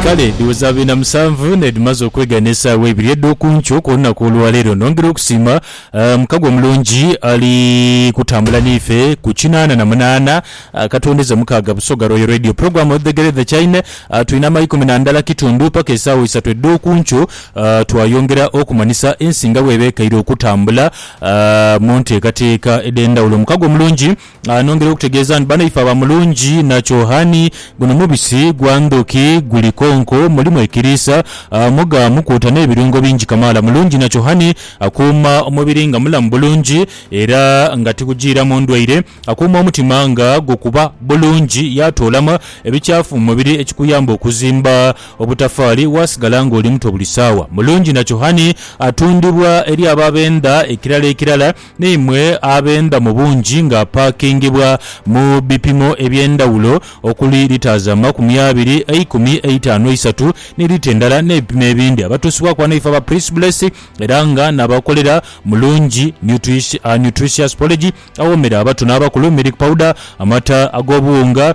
Kale dhiweza biina musanvu n'edhimaze okwegana esaawa ibiri edh'oku nkyo ku lunaku olwa leero. Nongera okusiima Mukagwa omulungi ali kutambula n'ife ku kinaana na munaana akatwendeza mukaaga Busoga Royal Radio Program of the Great The Chine. Twina amaikumi na ndala kitundu paka esaawa isatu edh'oku nkyo twayongera okumanhisa ensi nga bw'eba ekaire okutambula mu nteekateeka edh'endhawulo. Mukagwa omulungi. Anongera okutegeeza nti banaife aba Mulungi na Kyohani, guno mubisi gwa ndhuki, guli konko, mulimu ekiriisa, muga, mukuuta n'ebirungo bingi kamaala. Mulungi na Kyohani akuuma omubiri nga mulamu bulungi era nga tigujiiramu ndwaire. Akuuma omutima nga gukuba bulungi yaatoolamu ebikyafu mu mubiri ekikuyamba okuzimba obutafaali waasigala ng'oli muto buli saawa. Mulungi na Kyohani atundibwa eri abo abenda ekirala ekirala Naimwe abenda mu bungi ng'apakingibwa mu bipimo eby'endhawulo okuli lita za makumi abiri, eikumi, eitaanu, eisatu ni lita endala n'ebipimo ebindi. Abatuusibwaku ghano ife aba Prince Bless era nga n'abakolera mu Lungi Nutritious Porridge awoomera abato n'abakulu, milk powder, amata ag'obuwunga,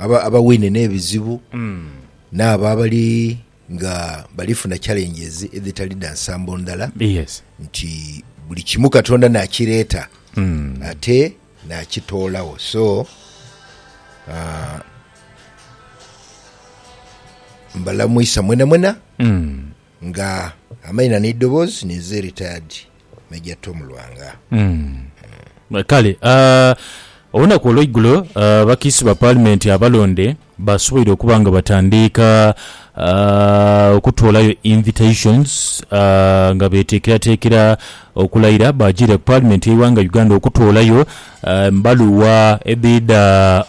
Abo abawaine n'ebizibu n'abo abali nga bali funa challenges edhitali dha nsambo ndala, nti buli kimu Katonda n'akireeta ate n'akitoolagho. So, mbalamwisa mwenamwena. Nga amaina n'eidhoboozi n'eze Retired Major Tom Lwanga. Kale olunaku olweigulo abakiise ba paalimenti abalonde basoboire okuba nga batandiika okutoolayo invitations nga beteekerateekera okulayira baajiire ku paalimenti y'eighanga Uganda okutoolayo embaluwa edhidha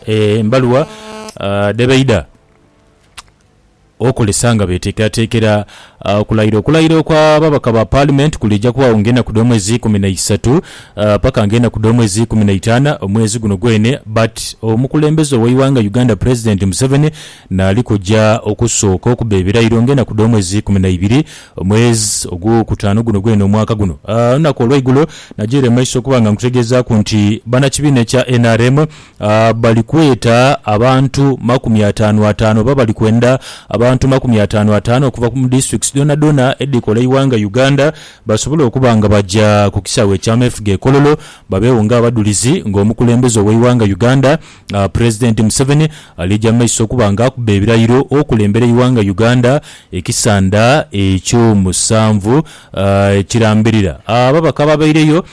embaluwa dhebaidha. okozesa nga beeteekerateekera okulayira. Okulayira okw'ababaka ba Paalimenti kuliija kubagho ng'enaku dh'omwezi ikumi na isatu paka ng'enaku dh'omwezi ikumi na itaanu omwezi guno gwene but omukulembeze ow'eighanga Uganda Pulezidenti Museveni naali kuja okusooka okuba ebirayiro ng'enaku dh'omwezi ikumi na ibiri omwezi ogw'okutaanu guno gwene omwaka guno. Olunaku olw'eigulo nagiire mu maiso okuba nga nkutegeezaaku nti bannakibiina ekya nrm A Bali kweta abantu makumi ataanu ataanu oba bali kwenda abantu makumi ataanu ataanu okuva mu districts dhonadhona edhikola eighanga Uganda basobole okuba nga baja ku kisaawe ekyameefuga e Kololo babeegho nga abadhulizi nga omukulembeze oweighanga Uganda President Museveni alija mu maiso okuba nga akuba ebirayiro okulembera eighanga Uganda ekisanda ekyomusanvu ekirambirira. Ababaka ababeireyo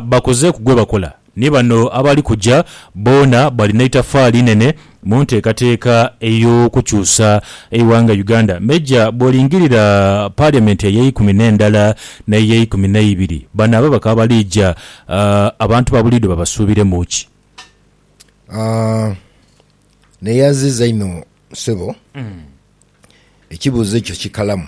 bakozeeku gwebakola. Ni bano abali kuja boona balina eitafaali inene mu nteekateeka ey'okukyusa eighanga Uganda. Meja bwolingirira Parliament ey'eikumi n'endala n'ey'eikumi n'eibiri, bano abo bakaba bali ja, abantu ba buliidho babasuubiremu ki? Neyaziza inho ssebo, ekibuuzo ekyo kikalamu.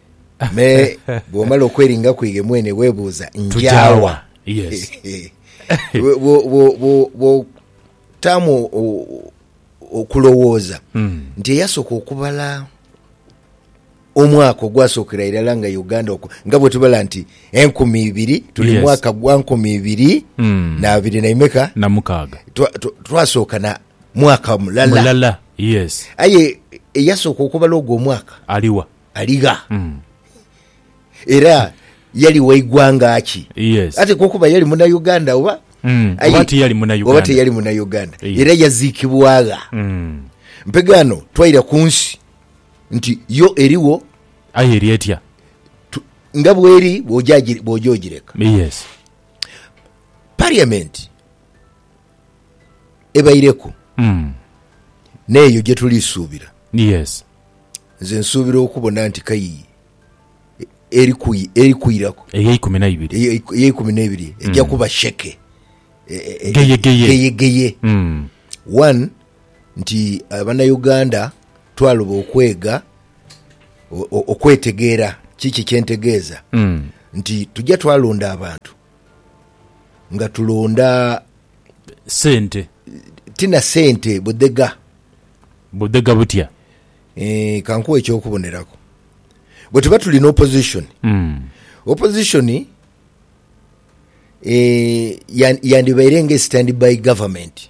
Me bw'omala okweringa kw'ighe mwene weebuuza, Nja wa? Bw'otaamu okulowooza nti eyasooka okubala omwaka ogwasookera irala nga Uganda okwo, nga bwe tubala nti enkumi ibiri, tuli mu mwaka gwa nkumi ibiri na abiri na imeka? Na mukaaga. Twasooka na mwaka mulala. Mulala, yes. Aye eyasooka okubala ogwo omwaka. Ali wa? Aligha. Era yali wa igwanga ki? Yes. Ate kwo kuba yali muna Uganda oba? Mm. Aye- Oba tiyali muna Uganda. Oba teyali muna Uganda. Yes. Era yaziikibwa gha. Mm. Mpegaano twaira ku nsi nti yo eriwo Aye eri etya? tu- nga bweri bw'oja agi- bw'oja ogireka. Yes. Parliament ebaireku n'eyo gye tuli suubira. Nze nsuubira okubona nti kai eri kwiraku ey'eikumi n'eibiri eja kuba sheke geyegeye. One, nti Abanauganda twaloba okwega, okwetegeera kiki kye ntegeeza nti tuja twalonda abantu nga tulonda sente ti na sente budhega. Budhega butya? Eeh kankuwe ekyokuboneraku. Bwetuba tuli ni opposition, opposition eeh yandibaire nga standby government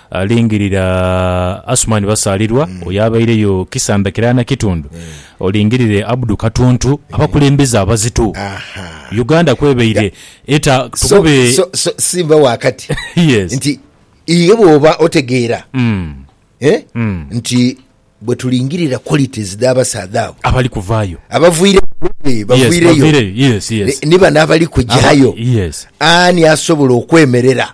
Alingirira Asuman Basaalirwa oyo abaireyo kisanda kirala na kitundu, olingirire Abdu Katuntu, abakulembeze abazito Uganda kwebaire eta tukube. So, so, so simba wa kati Yes. nti iwe bwoba otegeera eh, nti bwe tulingirira qualities dh'abasaadha abo Abali kuvaayo. abavwireyo eh, Yes, bavwireyo baviireyo. Yes, yes. ni- ni bano abali kujayo Aba- yes. ani asobola okwemerera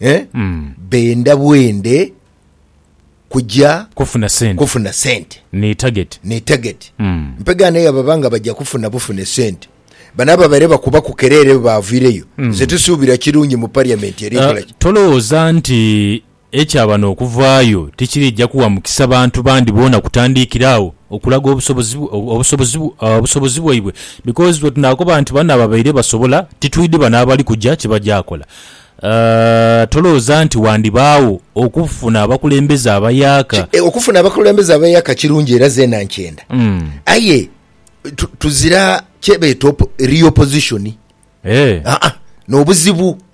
eh, mm. benda bwende kuja kufuna sente, kufuna sente ni target, ni target. Mm. mpega naye ababa nga baja kufuna bufune sente bano ababaire bakuba ku kerere bavireyo mm. nze tusuubira kirungi mu parliament eri uh, tolowooza nti ekyabano okuvaayo tikirija kuwa mukisa bantu bandi boona kutandiikira awo okulaga obusobozi obusobozi bwaibwe because bwetunakoba nti bano ababaire basobola titwidi bano abali kuja kyebajakola tolooza nti wandibaawo okufuna abakulembeze abayaka. Okufuna abakulembeze abayaka kirungi era zeena nkyenda aye tuzira kyebeeta real position eeh nobuzibu.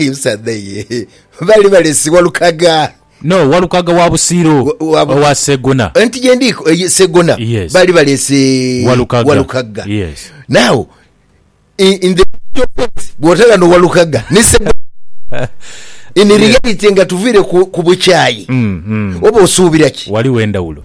Omusaadha ye baali baleese Walukaga. No, Walukaga wa Busiiro, owa Segona. Anti ye ndi Segona. Baali baleese Walukaga. Now, in the actual sense, bwota ghano Walukaga ni Segona, in reality nga tuviire ku bukyayi, oba osuubira ki? Ghaligho endhawulo.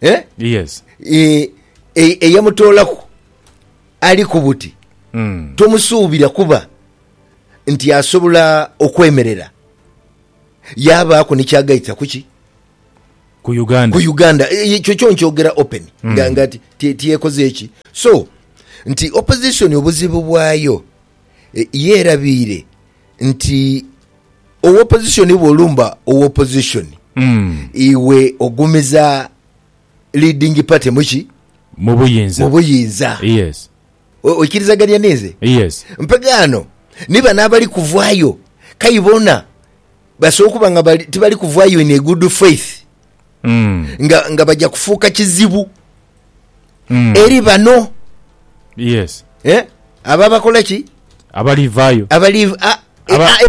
eh? yes Eh, e- eyamutoolaku ali ku buti Mm. tomusuubira kuba nti asobola okwemerera yabaaku nikyagaita kuki ku uganda ku uganda E- ekyo kyo nkyogera open nga nga ti- ti- tiyekoze eki so nti opposition obuzibu bwayo yeerabiire nti owopozishoni bw'olumba owopozishoni, iwe ogumiza leading party mu ki? Mu buyinza. Mu buyinza. Yes. Oikirizagania ninze? Yes. Mpegaano ni bano abali kuvaayo, k'aye boona basobola okuba nga bali tibali kuvaayo in a good faith. Mm. nga, nga bajja kufuuka kizibu Mm. eri bano Yes. eh? abo abakola ki Abalivaayo. abali a- e- Aba- a-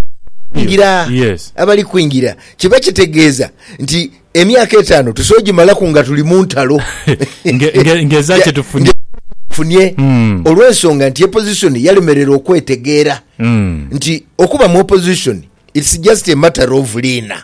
kwingira Yes. abali kwingira kiba kitegeeza nti emyaka etaano tusobola ogimalaku nga tuli mu ntalo Nge- nge- ngeza kye tufunye. funye Mm. olw'ensonga nti opposition yalemerera okwetegeera Mm. nti okuba mu opposition its just a matter of liina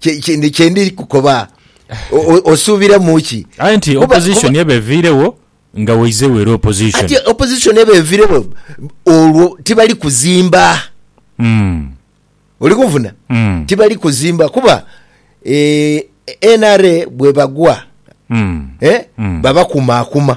kye- kye- ndi- kye ndi kukoba O- o- osuubira mu ki aye nti Kuba- opposition kuba- eba eviirewo nga waizegho era opposition ati opposition eba evirewo olwo tibali kuzimba Mm, oli kunfuna Mm. tibali kuzimba kuba eh, nra bwebagwa mm. eh, Mm. babakumaakuma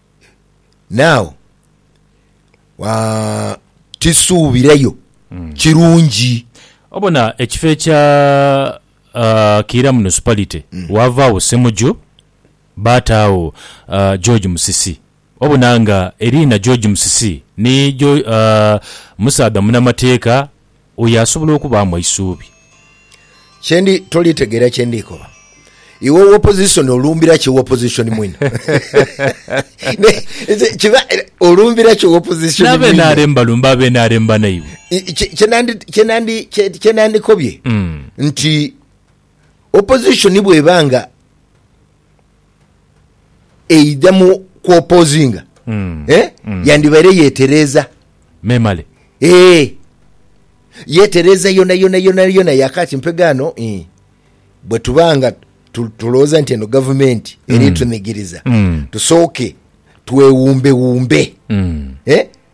naagho aa, tisuubirayo kirungi. Obona ekifo ekya aa, Kiira Municipality waavaagho Ssemuju baataagho aa, George Musisi. Obona nga eriina George Musisi ni Geo, aa, musaadha munamateeka Oyo asobola okubaamu eisuubi. Kye ndi toli tegeera kye ndi koba. Iwe owa opposition olumbira ki owa opposition mwine? Kiba olumbira ki owa opposition mwine? N'abe NRM balumba abe NRM banaibwe. Kye nandikobye hmm. nti. Opposition bweba nga eidha mu ku opposinga mm. eh? mm. yandibaire yetereeza memale eh. yetereeza yona yona yona yona yakati mpegaano eh. bwe tuba nga tulowooza nti eno gavumenti mm. eri tunigiriza mm. tusooke twewumbewumbe mm. eh?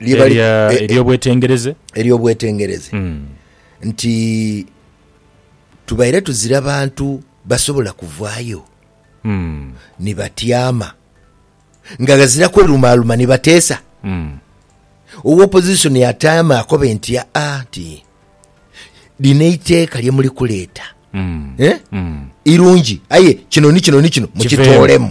ery'obwetengereze ery'obwetengereze nti tubaire tuzira bantu basobola kuvaayo hmm. ni batyama nga ghazira kwerumaaluma ni bateesa hmm. owa opposition yataama akobe nti aa ah, ah, nti lino eiteeka lye muli kuleeta hmm. eh? irungi aye kino ni kino ni kino mukitoolemu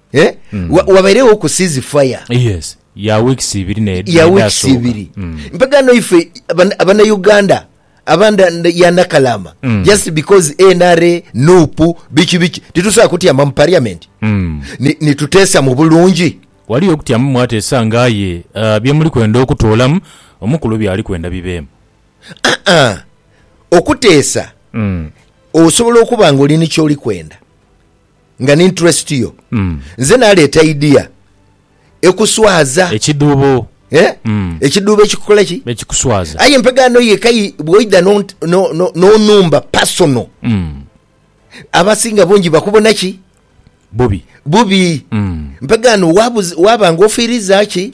Eh? Mm. Wa- wabairegho ku sizi faya yes ya weeks ibiri ne- ya weeks nedhasooka. ibiri Mm. mpegano ife abana- abanauganda abanda nda- ya nakalama Mm. just because nra nupu biki biki titusobola kutyama mu parliament Mm. ni- nituteesa mu bulungi waliyo okutyamu mwateesa ngaaye uh, byemuli kwenda okutoolamu omukulu byali kwenda bibeemu Ah, okuteesa mm. osobola okuba nga oli nikyoli kwenda Nga ni interest yo. Nze naleeta idea ekuswaza. Ekidhuubo. Eh? Ekidhuubo ekikukola ki? Ekikuswaza. Aye empegaano yeka yi bwoidha n'onumba personal, abasinga bungi bakubona ki? Bubi. Bubi. Mpegaano waba nga ofiiriza ki?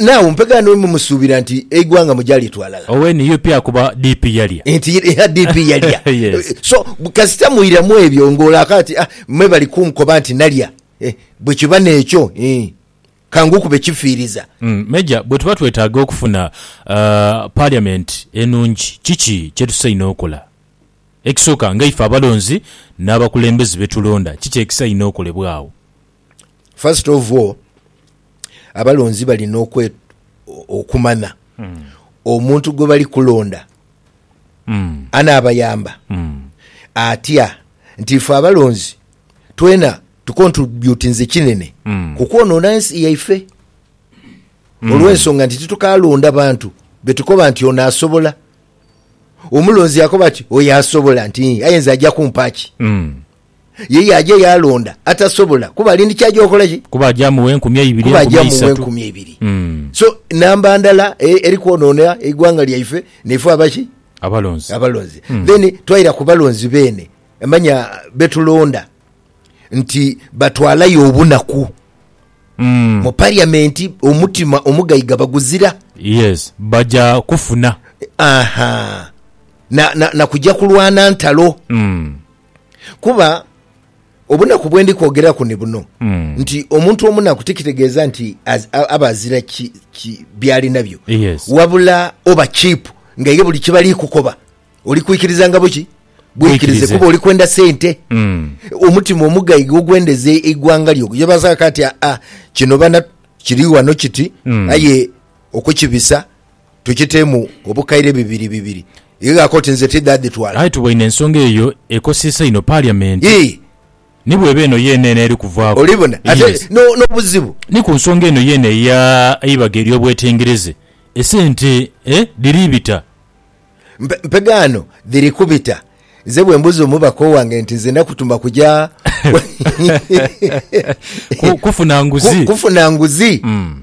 Now mpe ghano bwe mumusuubira nti eighwanga mugya litwala. Owe nup akuba DP yalya. Nti eha DP yalya. Yes. So kasita mwiramu ebyo nga olaaka ati ah me bali kunkoba nti nalya eh bwe kiba nekyo ih kangukube kifiiriza. Major, bwetuba twetaaga okufuna parliament enungi kiki kyetusaina okola? Ekisooka nga ife abalonzi n'abakulembeze betulonda kiki ekisaina okolebwa agho? first of all abalonzi balina okwe okumana mm. omuntu gwe bali kulonda mm. anaabayamba mm. atya nti ife abalonzi twena tukontributinze kinene mm. kukwonoona ensi yaife mm. olw'ensonga nti titukalonda bantu betukoba nti ono asobola omulonzi akoba ki oyo asobola nti ayenza ajja kumpaaki mm. Ye yaaja yaalonda atasobola, kuba ali ndi ky'aja okola ki? Kuba aja amugha enkumi eibiri, Kuba enkumi aja amugha eisatu. enkumi eibiri. Mm. So, namba ndala e- eri kwonoona eighanga lyaife naife aba ki? Abalonzi. abalonzi Mm. then twaira ku balonzi beene manya betulonda nti batwalayo obunaku Mm. mu parliament omutima omugaiga baguzira Yes. Baja kufuna. aha na, na, na kuja kulwana ntalo Mm. Kuba obunaku bwe ndi kwogeraku ni buno nti omuntu omunaku tikitegeeza nti aba azira byali nabyo, wabula oba chipu nga ye buli kyebali kukoba oli kwikiriza nga buki bwikirize kuba oli kwenda sente mm. omutima omugaiga ogwendeza eighwanga lyo yebazaka ati aa ah, ah, kino bana kiri wano kiti mm. aye okukibisa Tukitemu obukaire bibiri bibiri. Ighako oti nze tidha dhitwala. Aye tuboine ensonga eyo ekosesa inho Parliament. Yii. Ni bw'eba eno yeene eno eri kuvaaku. Olibona? Ate Yes. no, n'obuzibu. Ni ku nsonga eno yeene eya eibaga ery'obwetengereze, esente, eh, dhiri bita. Mpe, mpegaano dhiri kubita. Nze bwe mbuza omubaka owange nti nze nakutuma kuja Ku, kufuna nguzi. ku, kufuna nguzi. Mm.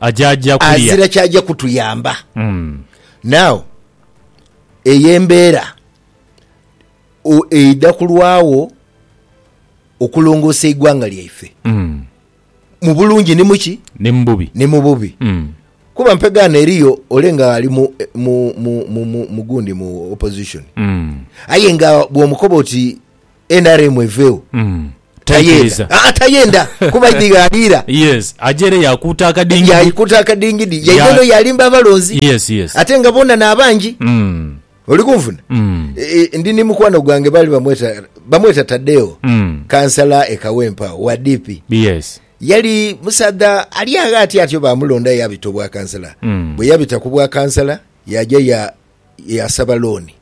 ajaja kulya. Azira kyaja kutuyamba. Now eyo embeera eidha kulwagho okulongoosa eighanga lyaife mu bulungi ni muki? Ni mu bubi. Kuba mpegaano eriyo ole nga ali mu gundi mu opposition aye nga bw'omukoba oti nrm eveewo. Tayenda. Aa, tayenda kuba idi ghaliira. Yes, aja ere yakuuta akadingidi. Yaikuuta akadingidi. Yaidha eno yalimba abalonzi. Yes, yes. Ate nga boona n'abangi. Oli kunfuna? Ndi ni mukwano gwange baali bamweta, bamweta Tadeo, kansala e Kawempe agho, wa DP. Yes. Yali musaadha ali agho atyatyo baamulonda yaabita obwakansala. Bwe yabita ku bwakansala, yaaja ya, yaasaba looni,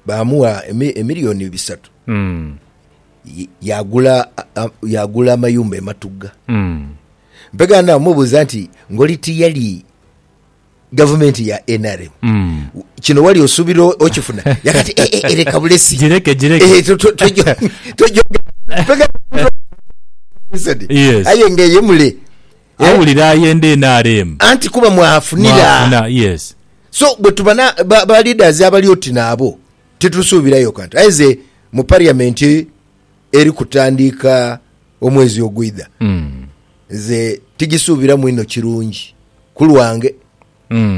baamugha emiliyoni bisatu, yaagula yaagula amayumba e Matugga. Mpegha naamubuuza nti ngoli tiyali gavumenti ya nrm kino wali osuubira okifuna? Yagamba nti "Eh, eh, eh, leka bulesi Gireke, gireke. Eh, to- to- tojo- tojo- Mpegha Yes. aye nga eye mule Eh? Awulira ayenda nrm. Anti kuba mwafunira. Mwafuna, yes. So bwetuba na ba, ba leaders abali oti naabo titusuubirayo kantu. Aye ze mu parliament eri kutandiika omwezi ogwidha nze tigisuubiramu inho kirungi ku lwange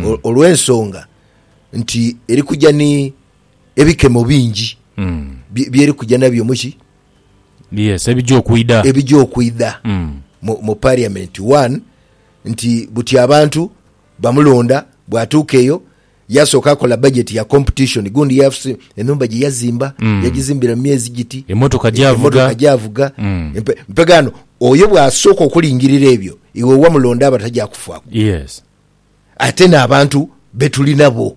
o- olw'ensonga nti eri kuja ni ebikemo bingi bye- byeri kuja nabyo muki Yes, ebija okwidha. Ebija okwidha mu parliament one nti buti abantu bamulonda bwatuuka eyo yasooka akola budget ya competition gundi yafusi enhumba gye yazimba yagizimbira mu myezi giti, Emotoka gyavuga. gyavuga empe, mpegaano oyo bwasooka okulingirira ebyo iwe wamulonda aba tajakufuaku Yes. ate n'abantu betuli nabo.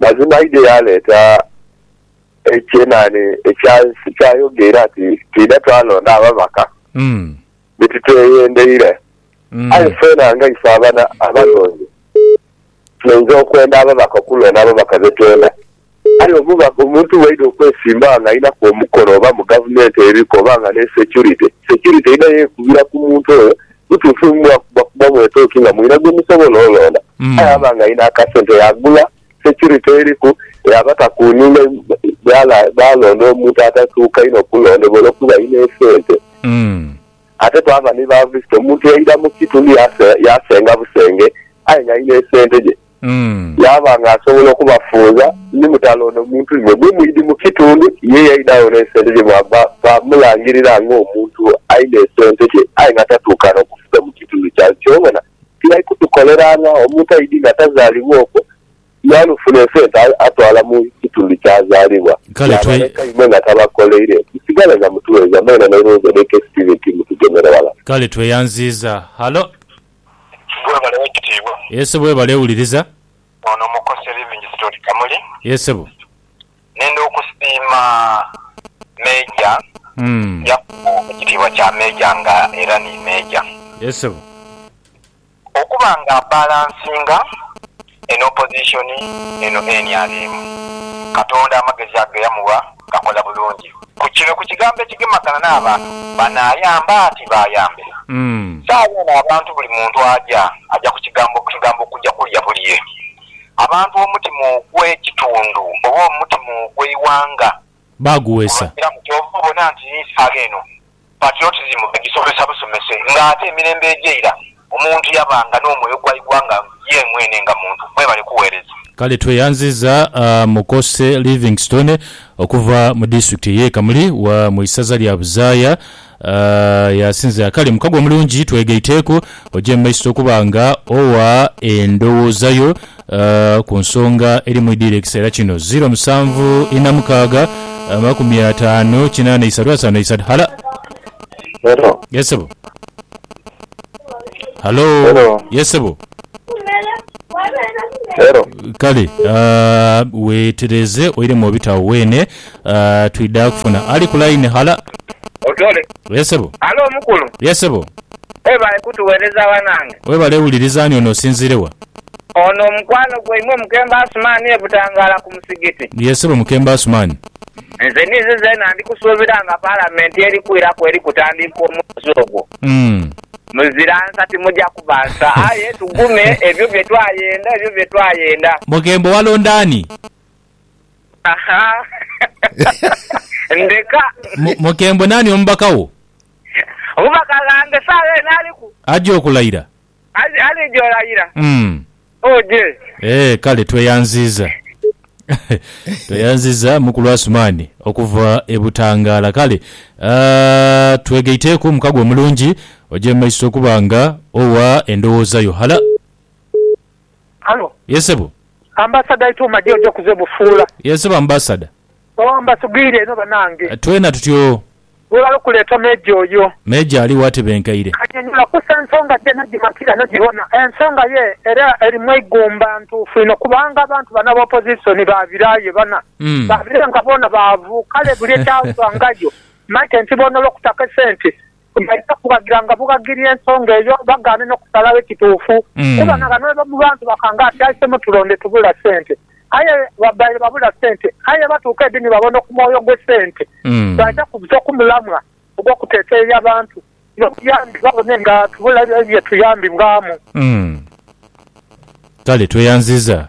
Mazima aidhie yaaleeta ekyenani ekya nsi kyayogeire ati, Twidha twalonda ababaka be titweyendeire. Aye feena nga ife abana abalonzi tuinza okwenda ababaka okulonda ababaka be twenda. Aye omubaka, omuntu bwaidha okwesimbawo nga alinaku omukono oba mu gavumenti eriku oba nga n'esecurite, securite eidha yekubira ku muntu oyo Kituufu mwakuba kuba mwetooki nga mulina gwe musobola olonda. Aye aba ng'alina akasente yaagula securite eriku yaba takuuninga bwalonda omuntu atatuuka inho kulondebwa olwokuba alina esente. Ate twaba ni ba visitor, omuntu yaidha mu kitundu yasenga busenge aye ng'alina esente dhe. Yaaba nga asobola okubafunza, ni mutale ono muntu inho, ni mwidhi mu kitundu. Ye yaidha agho n'esenirimu baamulangirira ng'omuntu alina esente dhe aye nga tatuukana kufuga mu kitundu kyaibwe. Ky'obona tibali kutukoleranga. Omuntu aidhi nga tazaalibwa okwo, yaalufuna esente atwala mu kitundu ky'azaalibwa, yaabaleka imwe nga tabakoleire. Musigale nga mutuweereza mwena n'erowoza edh'eka esitiivi nti mutugemere ghala. Kale tweyanziiza. Halo. Yesu bwebale wekitiibwa. Yesu bwebale wuliriza. Ono mukose Livingstone Kamuli. Yee sebo. Nenda okusiima Major Yakubu ekitiibwa kya Major nga era ni Major. Yee sebo. Okuba nga abalansinga. Eno opozisoni eno nrm Katonda amagezi ago geyamuwa gakola bulungi. Ku kino ku kigambo ekigemagana n'abantu, banaayamba ati baayambe. Saagho eno abantu buli muntu aja, aja ku kigambo ku kigambo kuja kulya bulye. Abantu omutima ogw'ekitundu oba omutima ogw'eighanga baaguweesa. Kiramu kyova obona nti n'esaala eno patriotism bagisomesa busomese nga ate emirembe egy'eira omuntu yabanga n'omwoyo gwa igwanga ye mwene nga muntu. Mwebale kuweereza. Kale tweyanziza Mukose Livingstone okuva mu disitulikiti ey'e Kamuli wa mu isaza lya Buzaaya. Aah yasinzira kale mukago omulungi twegaiteeku oje mu maiso okuba nga owa endhowooza yo ku nsonga eri mu idhiire ekiseera kino. Ziro musanvu ina mukaaga amakumi ataano kinaana isatu ataano isatu. Halo. Hello. Yes sebo. Halo. Hello. Yes sebo. Hello. Kale aah wetereeze oiremu obita awo weene. Aah twidha kufuna ali ku line. Hala. Otore. Yes sebo. Halo mukulu. Yes sebo. Webale kutuwereza banange. Webale wuliriza ani ono osinziire wa? Ono mukwano gwaimwe Mukemba Asuman e Butangala ku musigiti. Yes sebo Mukemba Asuman. Nze ninze zeena ndi kusuubira nga palamenti eri kwiraku eri kutandiika omwezi ogwo. Umm. Muzira nsa timuja kuba nsa. Aye tugume ebyo bye twayenda ebyo bye twayenda. Mukembo walonda ani? Ahaa. Ndeka. Mu- Mukembo nani omubaka wo? Omubaka ghange saagha eno aliku. Aja okulaira? Ali, alija olayira. Mm. Oh dear. Eeh kale tweyanziza tweyanziza mukulu Asumani okuva e Butangala kale aah twegaiteku mukago omulungi oje mumaiso okuba nga owa endowooza yo hala. Halo. Yes sebo. Ambasada aite omadi oja kuza ebufuula. Yes sebo ambasada. Ooh mbasugwire inho banange. Twena tutyoo. Webale okuleta Major oyo. Major aligho atebenkeire. Anyonyola kusa ensonga gye nagimatira nagibona. Ensonga ye era eri mweigumba ntuufu inho kubanga abantu bano aba opposition baabira ye bana baabire nga boona baavu kale buli ekyavangayo maite nti boona olwokuta akesente Baidha kubagira nga bubagiria ensonga eyo bagaane n'okusalagho ekituufu kuba na bano mu bantu bakanga ati, Aise mutulonde tubula sente. Aye babaire babula sente, aye batuuka edi ni babona okumwoyo gw'esente, baidha kubuza okumulamwa ogw'okuteteeya bantu n'obuyambi babone nga tubula bye tuyambibwamu. Kale tweyanziza.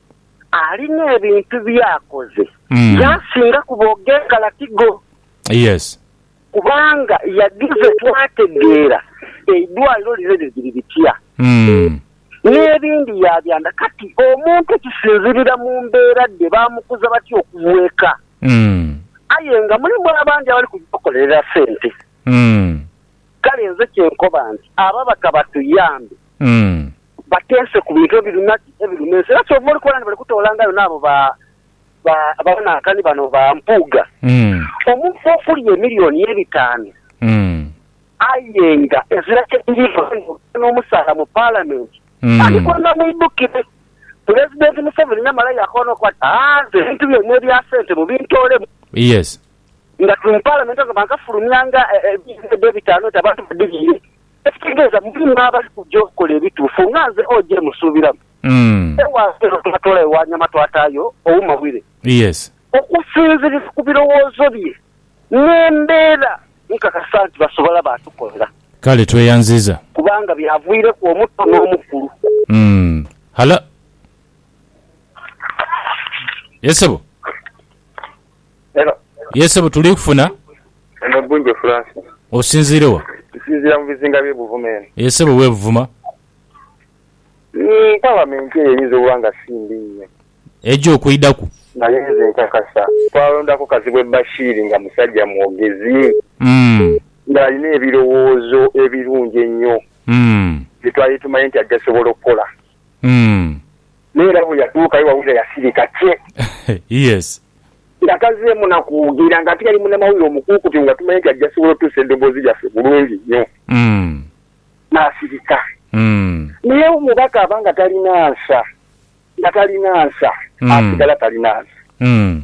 alina ebintu by'akoze by'asinga ku b'og'enkalati go. Yes. Kubanga yadhize twategeera eidwaliro lino liri liri litya, n'ebindi yaabyanda. Kati omuntu kisinziirira mu mbeera dhe baamukuza batya okuva eka. Aye nga mulimu abandi abali kugya kukolerera sente. Kale nze kye nkoba nti ababaka batuyambe bateese ku bintu ebiruma ki? Ebiruma ensi. Era kyova oli kubona nti bali kutoolangayo n'abo ba, ba, banankani bano ba Mpuuga. Omuntu okulya emillioni ebitaanu aye nga ezira kye dhiriiko aye nga okulya n'omusaala mu Paalamenti, ani gw'anaamwidhukire? Pulezidenti Museveni yamala yaakoba n'okukoba ati, Haa, nze ebintu byaimwe ebya sente mubintoolemu. nga tuli mu Palamenti ezo baakafulumya nga ebizibu edho ebitaanu nti abantu badhibiire, ekitegeeza mulimu abali kuja okukola ebituufu nga nze OJ musuubiramu. Ewaabwe eno twatoola ewa Nyama twataayo Ouma Wire. Okusinziira ku birowoozo bye n'embeera nkakasa nti basobola baatukolera. Kale tweyanziza. Kubanga byavwireku omuto n'omukulu. Hala. Yes sebo. Hello. Yee sebo tuli kufuna. Ono Gunje Francis. Osinziire wa? Nsinziira mu bizinga bye Buvuma eno. Yee sebo we Buvuma. Umm parliament eyo eyinza okuba nga si mbi inho. Eja okwidhaku. Naye nze nkakasa twalondaku Kazibwe Bashir nga musajja mwogezi. Umm. Nga alina ebirowoozo ebirungi ennyo. Umm. Bye twali tumanyi nti ajja sobola okukola. Umm. N'era bwe yatuukayo Wawira yasirika kye. Yes. Nga tazzeemu na kwogera, nga ate yali munamawulire omukuukutu nga tumanyi nti ajja sobola otuusa eddoboozi lyaffe bulungi nnyo. Umm. N'asirika. Umm. Naye omubaka aba nga talina nsa, nga talina nsa, asigala talina nsa. Umm.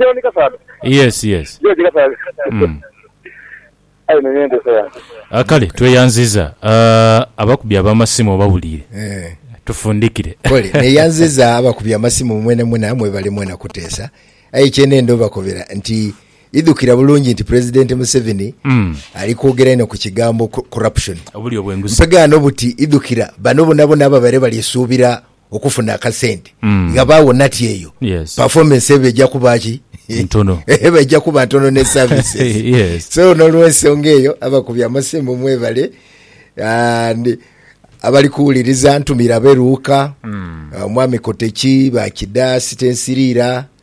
John Kasaadha. Yes yes. George Kasaadha. Mm. Aye nonya enteesa yange. A kale tweyanziza uh, abakubi abamasimu obawulire Eeh. tufundikire. Pole. Neyanziza abakubi amasimu mwena mwena mwebale mwena kuteesa. Aye kyenenda obakobera nti idhukira bulungi nti President Museveni Mm. ali kwogera inho ku kigambo corruption. Obulyo bwenguzi. Mpegaano buti idhukira bano bonabona ababaire bali suubira okufuna akasente mm. nga bawo nati eyo yes. performance eba eja kuba ki ntono eba eja kuba ntono ne services yes. so nolwensonga eyo abakubi amasimu mwebale and abali kuwuliriza ntumira beruuka mm. uh, mwami koteki bakida sitensirira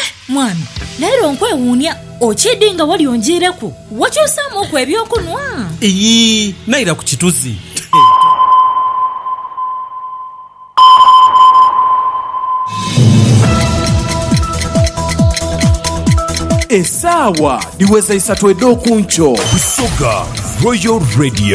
Eh, mwami, leero nkwewuunia okiidi nga wali onjiireku. Wakyusaamuuku eby'okunhwa? Iyii, naira ku kituzi. Esaawa dhiweza isatu edh'oku nkyo. Busoga Royal Radio.